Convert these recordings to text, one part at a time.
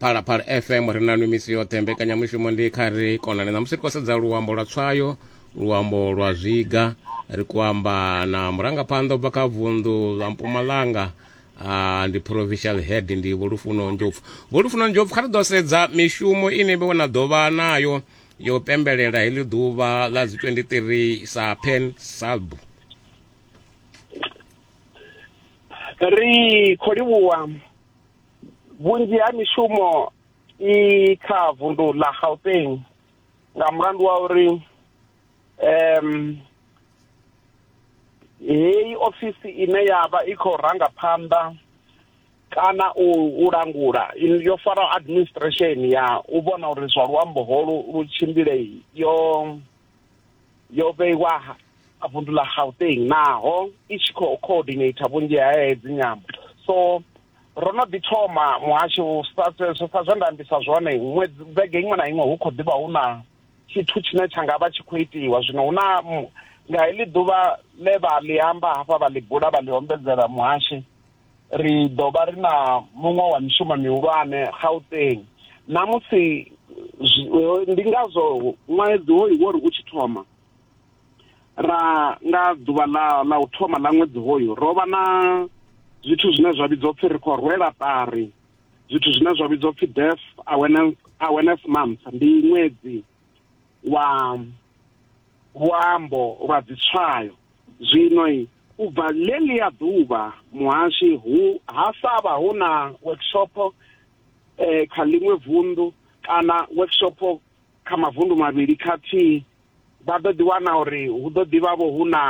phalaphala fm ri nanu misi yoṱhe mbekanyamushumo ndi kha ri konane ṋamusi ri khou sedza luambo lwa tswayo luambo lwa zwiga ri khou amba na murangaphanḓa u bva kha vunḓu ḽa mpumalanga Uh, ndi provincial head ndi vholufuno njopfu vholufuno njopfu kha ri ḓo sedza mishumo ine vhe na ḓo vha nayo yo pembelela heḽi ḓuvha ḽa dzi 23 sa pen salb ri khou livhuwa vhunzhi ha mishumo i kha vundu ḽa Gauteng nga mulandu wa uri um heyi ofisi ine ya vha i khou ranga phanḓa kana u langula yo fara administration ya u vhona uri zwa luambo holu lu tshimbile yo yo vheiwa a vundu ḽa gauteng naho i tshi khou coordinator vhunzhi ha hedzi nyambo so ro no ḓi thoma muhasho sa zwe nda ambisa zwone ṅwedzi vhege iṅwe na iṅwe hu khou ḓivha hu na tshithu tshine tsha nga vha tshi khou itiwa zwino hu na nga heḽi ḓuvha ḽe vha ḽi amba hafha vha ḽi bula vha ḽi ombedzela muhashi ri ḓo vha ri na muṅwe wa mishumo mihulwane gauteng na musi ndi ngazwo ṅwedzi hoyu wo ri u tshi thoma ra nga ḓuvha ḽa ḽa u thoma ḽa ṅwedzi hoyu ro vha na zwithu zwine zwa vhidzwa upfhi ri khou rwela ṱari zwithu zwine zwa vhidzwa upfhi death awareness awareness month ndi ṅwedzi wa luambo lwa dzitswayo Zwino u bva ḽeḽia ḓuvha muhashi hu ha sa vha hu na workshop eh, kha ḽiṅwe vunḓu kana workshop kha mavundu mavhili khathihi vha ḓo ḓi wana uri hu ḓo ḓi vha vho hu na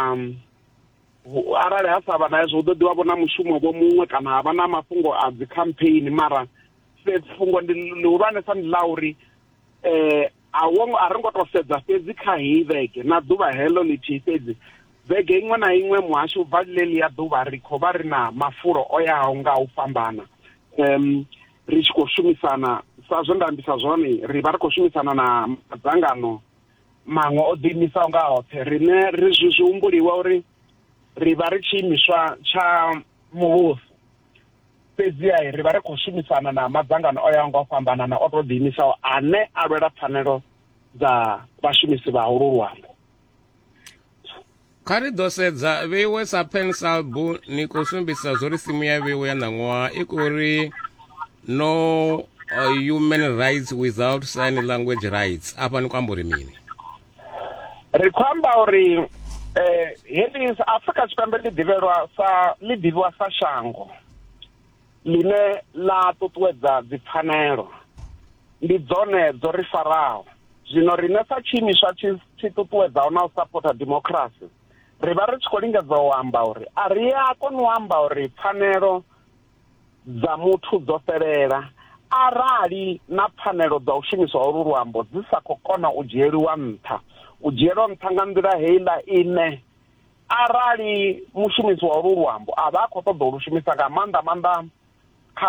arali ha sa vha na hezwo hu ḓo ḓi vha vho na mushumo vho muṅwe kana ha vha na mafhungo a dzi campaign mara fhungo ndi ḽihulwanesa ndi ḽa uri um a wo ngo a ri ngo to sedza fhedzi kha heyi vhege na ḓuvha heḽo ḽithihi fhedzi vhege iṅwe na iṅwe muhasho u bva ḽeḽi ya ḓuvha ri khou vha ri na mafulo o yaho nga u fhambana um ri tshi khou shumisana sa zwe nda ambisa zwone ri vha ri khou shumisana na madzangano maṅwe o ḓiimisaho nga hoṱhe riṋe ri zwi humbuliwa uri ri vha ri tshiimiswa tsha muvhuso fhedziha ri vha ri khou shumisana na madzangano o yaho nga u fhambanana o tou ḓiimisaho ane a lwela pfanelo dza vhashumisi vha holu luambo kha ri ḓo sedza vheiwe sa pensalbu ni khou sumbisa zwo ri simu ya vheiwe ya ṋaṅwaha i khou ri no uh, human rights without sign language rights afha ni khou amba uri mini ri khou amba uri eh heḽi Afrika Tshipembe ḽi ḓivhelwa sa ḽi ḓivhiwa sa shango ḽine ḽa ṱuṱuwedza dzipfanelo ndi dzone dzo ri faraho zwino riṋe sa tshiimiswa tshi tshi ṱuṱuwedzaho na u sapota democracy ri vha ri tshi khou lingedza u amba uri a ri a kona u amba uri pfanelo dza muthu dzo fhelela arali na pfanelo dza u shumiswa holu luambo dzi sa khou kona u dzhieliwa nṱha u dzhielwa nṱha nga nḓila heiḽa ine arali mushumisi wa holu luambo a vha a khou ṱoḓa u lu shumisa nga maanḓa maanḓa kha